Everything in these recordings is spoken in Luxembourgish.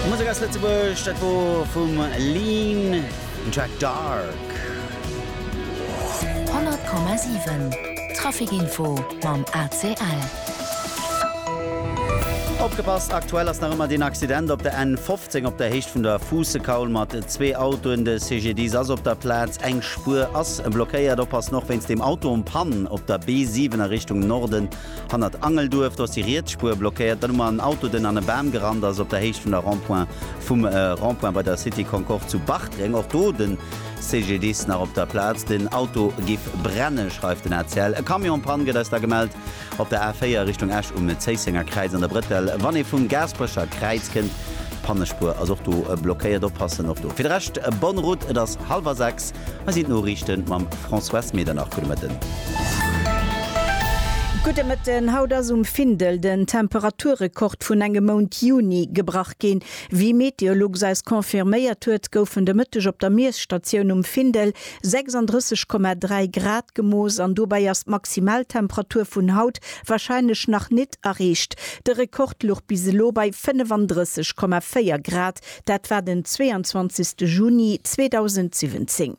Musek aus Lëtzebuerg, dat wor vum Lean, den Track Dark. 100,7 Trafikinfo mam ACL. Opgepasst, aktuell ass nach ëmmer deen Accident op der N 15 op der Héicht vun der Fuussekaul mat zwee Autoen. De CGDIS ass op der Plaz, eng Spuer ass blockéiert. Oppassen och wéinst dem Auto en panne op der B 7 a Richtung Norden. Hannert Angelduerf, do ass déi riets Spuer blockéiert. Dann hu mer en Auto, den an e Bam gerannt ass op der Héicht vun der Rond-point, vum Rond-point bei der Cité Concorde zu Bartreng. Och do de CGDIS nach op der Plaz. Den Auto géif brennen, schreift den ACL. E Camion en Panne gëtt eis da gemellt op der A4 Richtung Esch um Zéissenger Kräiz an der Brëttel, wann ee vum Gaasperecher Kräiz kënnt. D'Pannespuer ass och do blockéiert. Oppassen och do. Fir de Rescht, bonne route, et ass hallwer sechs. Hei sinn d'Noriichten mam Françoise Medernach. Gudde Mëtten. Gudde Mëtten. Haut ass um Findel den Temperaturrekord vun engem Mount Juni gebrach ginn. Wéi Meteolux eis confirméiert huet, goufen de Mëtteg op der Miesstatioun um Findel 36,3 Grad gemooss an dobäi ass d'Maximaltemperatur vun haut warscheinlech nach nit erreecht. De Rekord luch bis elo bei 35,4 Grad. Dat war den 22 Juni 2017.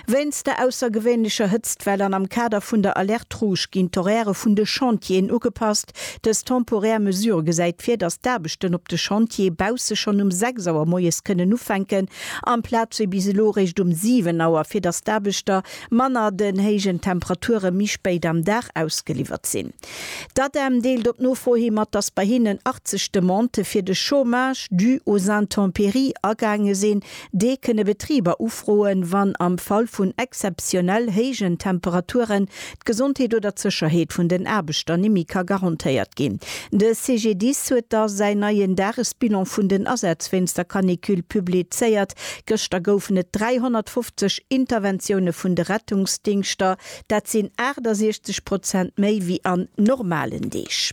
Wéinst der aussergewéinlecher Hëtztwell an am Kader vun der Alerte Rouge ginn d'Horairë vun de Chantieren ugepasst. Dës temporär Mesure gesäit vir, datt d'Aarbechten op de Chantiere bausse schonn um 6 Auer moies kënnen ufänken, amplaz wéi bis elo réischt um 7 Auer, fir datt d'Aarbechter manner den héijen Temperature méi spéit am Dag ausgeliwwert sinn. D'ADEM deelt op Nofro hi mat, dass bei hinnen 80 Demandë fir de Chômage dû aux intempéries agaange sinn. Dee kënne Betriber ufroen, wann am Fall vun exzeptionell héijen Temperaturen d'Gesondheet oder d'Sécherheet vun den Aarbechter nimi ka garantéiert ginn. De CGDIS huet da säin neien Dagesbilan vun den Asätz wéinst der Canicule publizéiert. Gëschter goufen et 350 Interventioune vun de Rettungsdingschter Dat sinn 68 Prozent méi wéi an normalen Deeg.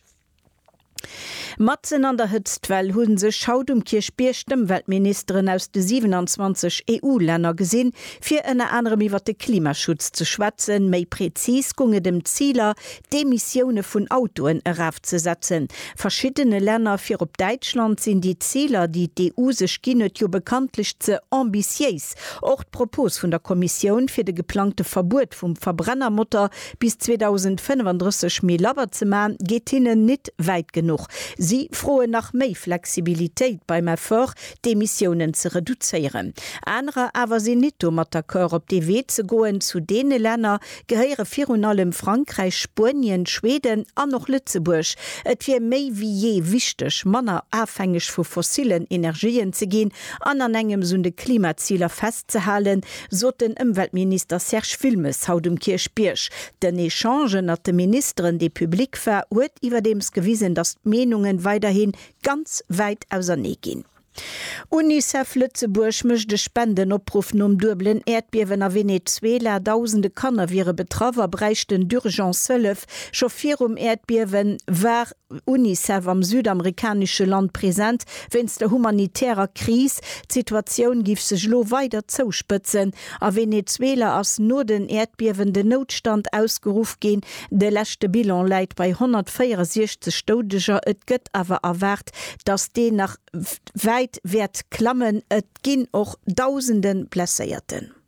Matzen an der Hëtztwell hu sech haut um Kierchbierg d'Ëmweltministeren aus de 27 EU-Länner gesinn, fir ënner anerem iwwer de Klimaschutz ze schwätzen. Méi prezis gung et ëm d'Ziler, d'Emissioune vun Autoen erafzesetzen. Verschiddene Länner, virop Däitschland, sinn déi Ziler, déi d'EU sech ginn huet, jo bekanntlech ze ambitiéis, Och d'Propos vun der Kommissioun, fir de geplangte Verbuet vum Verbrennermotor bis 2035 méi labber ze man, geet hinnen nit wäit genuch. Si froen nach méi Flexibilitéit beim Effort, d'Emissiounen ze reduzéieren. Anerer awer sinn nit domat d'accord, op dee Wee ze goen. Zu deene Länner gehéiere virun allem Frankräich, Spuenien, Schweden an och Lëtzebuerg. Et wier méi wéi jee wichteg, manner afhängeg vu fossilen Energien ze ginn an an engems un de Klimaziler festzehalen, sot den Ëmweltminister Serge Wilmes haut um Kierchbierg. Den Echange ënnert de Ministeren, dee public war, huet iwwerdeems gewisen, datt d'Meenunge weiderhi ganz wäit ausernee ginn. Unicef Lëtzebuerg mécht e Spendenopruff nom duebelen Äerdbiewen a Venezuela. Dausende Kanner wiere betraff a bräichten d'Urgence Hëllef. Scho virum Äerdbiewe war Unicef am südamerikanesche Land present wéinst der humanitärer Kris. D'Situatioun géif sech elo weider zouspëtzen. A Venezuela ass no den Äerdbiewen den Noutstand ausgeruff ginn. De leschte Bilan läit bei 164 Doudeger. Et gëtt awer erwaart, datt deen nach wäit wäert klammen. Et ginn och dausende Blesséierten.